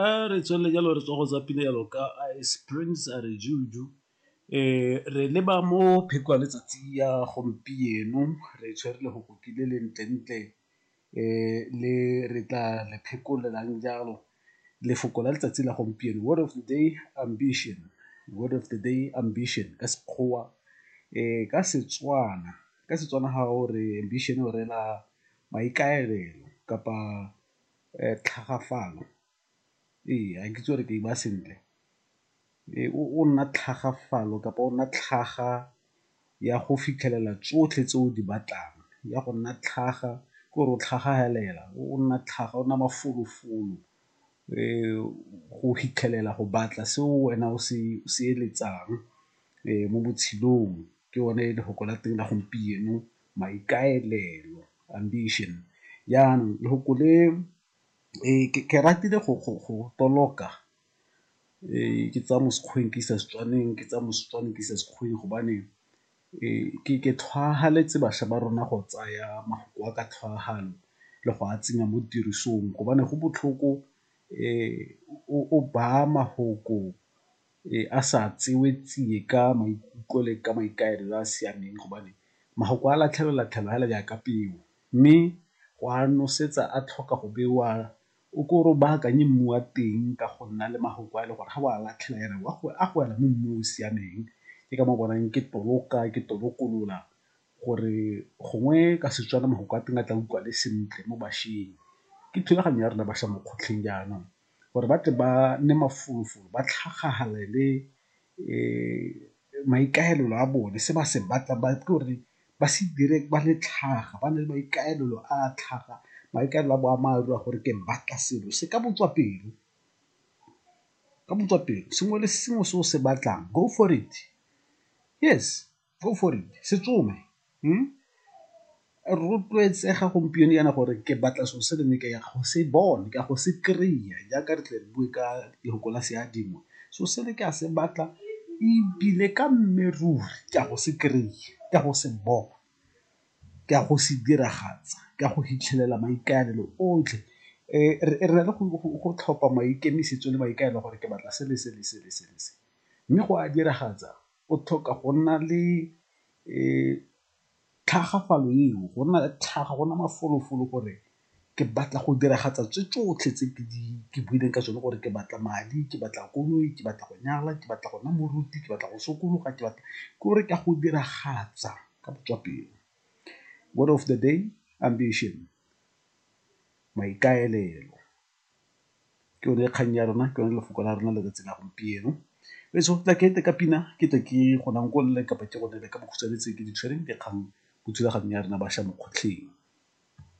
A re tswelele jalo re tswa go tsa pina jalo ka Springs a re juju re leba mo pheko ya letsatsi ya gompieno re tshwere le go kokile le ntle ntle le re tla le phekolelang jalo lefoko la letsatsi la gompieno word of the day ambition, word of the day ambition ka Sekgowa. Ka Setswana, ka Setswana ga o re ambition o rela maikaelelo kapa. tlhagafalo, ee ga ke itse gore ke e baya sentle, o nna tlhagafalo kapa o nna tlhaga ya go fitlhelela tsotlhe tse o di batlang, ya go nna tlhaga ke gore o tlhaga fela o nna tlhaga o nna mafolofolo go fitlhelela go batla se wena o se eletsang mo botshelong ke yone lefoko la teng la gompieno. maikaelelo, ambition. Jaanong lefoko le ke ratile go toloka ke tsaya mo Sekgweng ke isa Setswaneng, ke tsaya mo Setswaneng ke isa Sekgweng gobane ke tlhwagaletse bašwa ba rona go tsaya mafoko a ka tlhwaagano le go a tsenya mo tirisong gobane go botlhoko o baya mafoko. a sa tsewe tsie ka maikutlo le ka maikaelelo a a siameng gobane mafoko a latlhelolatlhelwa fela jaaka peo mme go a nosetsa a tlhoka go bewa o ko o baakanye mmu wa teng ka go nna le mafoko a e le gore ga o a latlhela yana a go wela mo mmu o o siameng ke ka moo o bonang ke toloka ke tolokolola gore gongwe ka Setswana mafoko a teng a tla utlwagale sentle mo bašweng. Ke thulaganyo ya rona bašwa mo kgotlheng jaanong gore ba tle ba nne mafolofolo ba tlhagagalele maikaelelo a bone se ba se batlang ba itse gore ba se dire ba le tlhaga ba na le maikaelelo a tlhaga maikaelelo a boammaaruri a gore ke batla selo se ka botswa pelo sengwe le sengwe se o se batlang go for it yes. go for it se tsome rotloetsega gompieno yana gore ke batla so se ne ke ya go se bone ka go se kry-a jaaka re tle re bue ka lefoko la seadingwe so se ne ke a se batla ebile ka mmeruri ke a go se kry-a, ke a go se bona, ke a go se diragatsa, ke a go fitlhelela maikaelelo otlhe. Re na le go tlhopha maikemisetso le maikaelelo gore ke batla se le se le se le se le se mme go a diragatsa o tlhoka go nna le tlhagafalo eo, go nna le tlhaga, go nna mafolofolo gore ke batla go diragatsa tse tsotlhe tse ke buileng ka tsone gore ke batla madi, ke batla koloi, ke batla go nyala, ke batla go nna moruti, ke batla go sokologa, ke batla gore ke a go diragatsa ka botswapelo. Word of the day, ambition, maikaelelo. ke yone kgang ya rona ke yone lefoko la rona letsatsi la gompieno e so tla kete ka pina ke tle ke gonang ko nne kapa ke gone le ka bokhutshwane tse ke di tshwereng dikgang mo thulaganyong ya rena bašwa mo kgotlheng